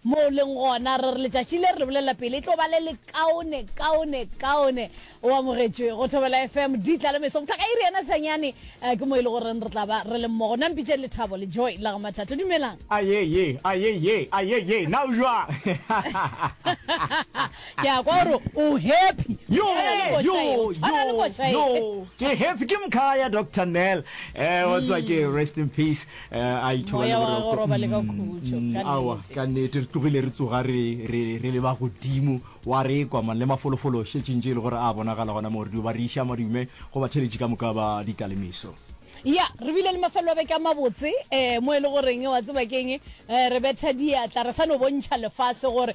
Moo o leng gona, re re letšatši le re le bolelela pele e tlo ba le lekaone, kaone, kaone. O amogetšwe go Thobela FM, di tla le meso go fihla ka iri ya nasanyane. Ke moo e le goreng re tla ba re le mmogo. Nna mpitšeng Lethabo le Joy la ga Mathato. Dumelang. Aye ye, aye ye, aye ye, na o jwang? Ke a kwa o re o happy. Yo, yo, yo, yo, ke happy ke mkhaya Doctor Nel. Eh, wa tswa ke rest in peace. Eh, a ithoba Moya le wa gagwe boroko. o robale ka khutšo, Mm, ka aowa, nnete. ka nnete re tlogile re tsoga re re- re leba godimo wa re kwa man le mafolofolo šetšeng tše e le gore a bonagala gona moo re dio ba re iša madume go batheletši ka moka ba ditalemiso ya re bile le mafelelo a beke a mabotse um mo e le goreng wa tseba keng um re betha diatla re sa no bontšha lefase gore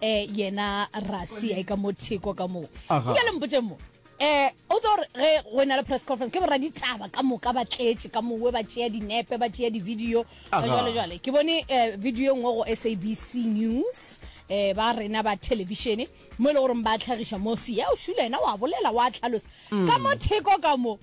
eh yena rasi a e ka mo theko ka moo Aha. nka le mpotse mo eh o tlo re ge go ena le press conference ke borra ditaba ka moka ba tletše ka mowe ba tšea dinepe ba tšea di-video Aha. jwale jwale ke bone eh, video e nngwe go sabc news eh ba rena ba televišene mo e le goreng ba tlhagiša mo sea o šula ena wa bolela wa tlhalosa ka mo theko ka mo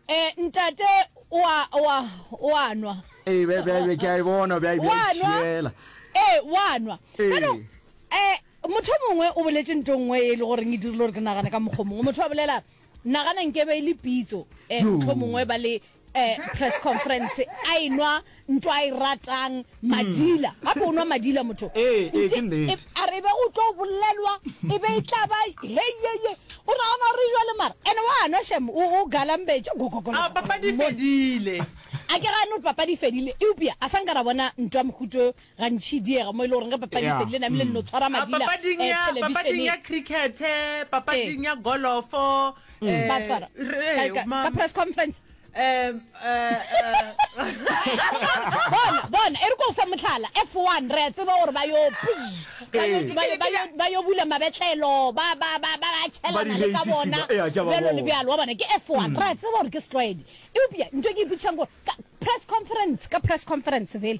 E, ntate o a, o a, o a nwa. Ee, bja- bja- bja- ke a e bona bja- bja Wa nwa? itšhiela. Ee, wa nwa. Ee. Bjalo, eh, motho o mongwe o boletse nto nngwe e le goreng e dirile gore ke nagane ka mokgwa o mongwe motho a bolela nagana nkebe e le pitso um Yo. motho o mongwe ba le um press conference a e nwa Ntho a e ratang madila. Gape o nwa madila motho. Ee, ee, ke nnete. A re e be o tlo bolelwa, e be e tla ba heyeye. O nagana gore e jwale mara. Ene wa nwa shem, o o galambetše. A papadi e fedile. A ke gane gore papadi e fedile. Eupša a sa nka ra bona ntwa mokhuto gantši diega mo e le goreng ge papadi e Yeah. fedile namile nno tshwara A madila papading eh, ya papading television-eng. ya cricket, papading ya golofo. Ba tshwara. Re- Ka- ka- ma- ka press conference. um bona bona e re ko fa motlhala f one re a tseba gore ba yo ba yo bula mabetlelo ba tšhelana le ka bona bjalo le bjalo wa bona ke f one re a tseba gore ke setlwaedi eupša nto ke ipotšhang gore press conference ka press conference fela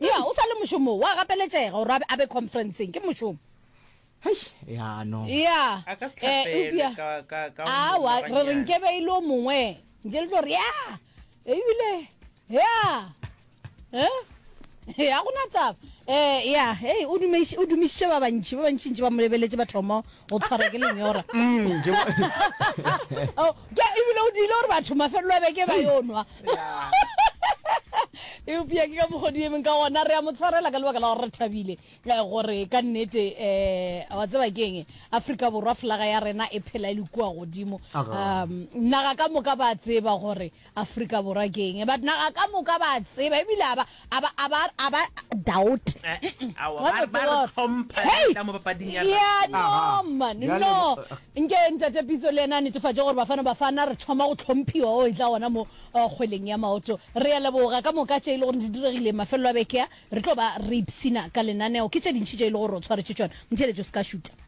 Ya, o sa le mošomong, wa gapeletšega gore a be, a be khonferenseng. Ke mošomo. Hei, ya, no. Ya, A ka se eh, hlapelwe eupša, ka, ka, ka o awa, mongwe re re ganyane. nke be e le o mongwe. Nke le tlo re, ya, ebile, ya, eh, ya, go na taba. Eh, ya, hei, o dumeiš- o dumišitše ba bantši, ba bantšintši ba mo lebeletše, ba thoma go tshwara ke lenyora mm, oh, ebile o diile gore batho mafelelo a beke ba yo nwa eupša ke ka mokgodi emeng ka gona re a mo tshwarela ka lebaka la gore re thabile eh, gore ka nnete um wa tseba keng aforika borwa flaga ya rena e phela e le kua godimo um naga ka moka ba tseba gore Afrika Borwa ke eng? But naga ka moka ba a tseba ebile a ba a ba a ba a ba doubt. Hey! Yeah, no man, no. Nke ntate Pitso le ena netefatše gore Bafana Bafana re thoma go tlhomphiwa o e tla gona mo uh, kgweleng ya maoto. Re ya leboga ka moka tše e le gore di diregile mafelelo a bekea. Re tlo ba re ipsina ka lenaneo. Ke tše dintšhi tše e le gore o tshwaretše tšona. Mtheletše o se ka šuta.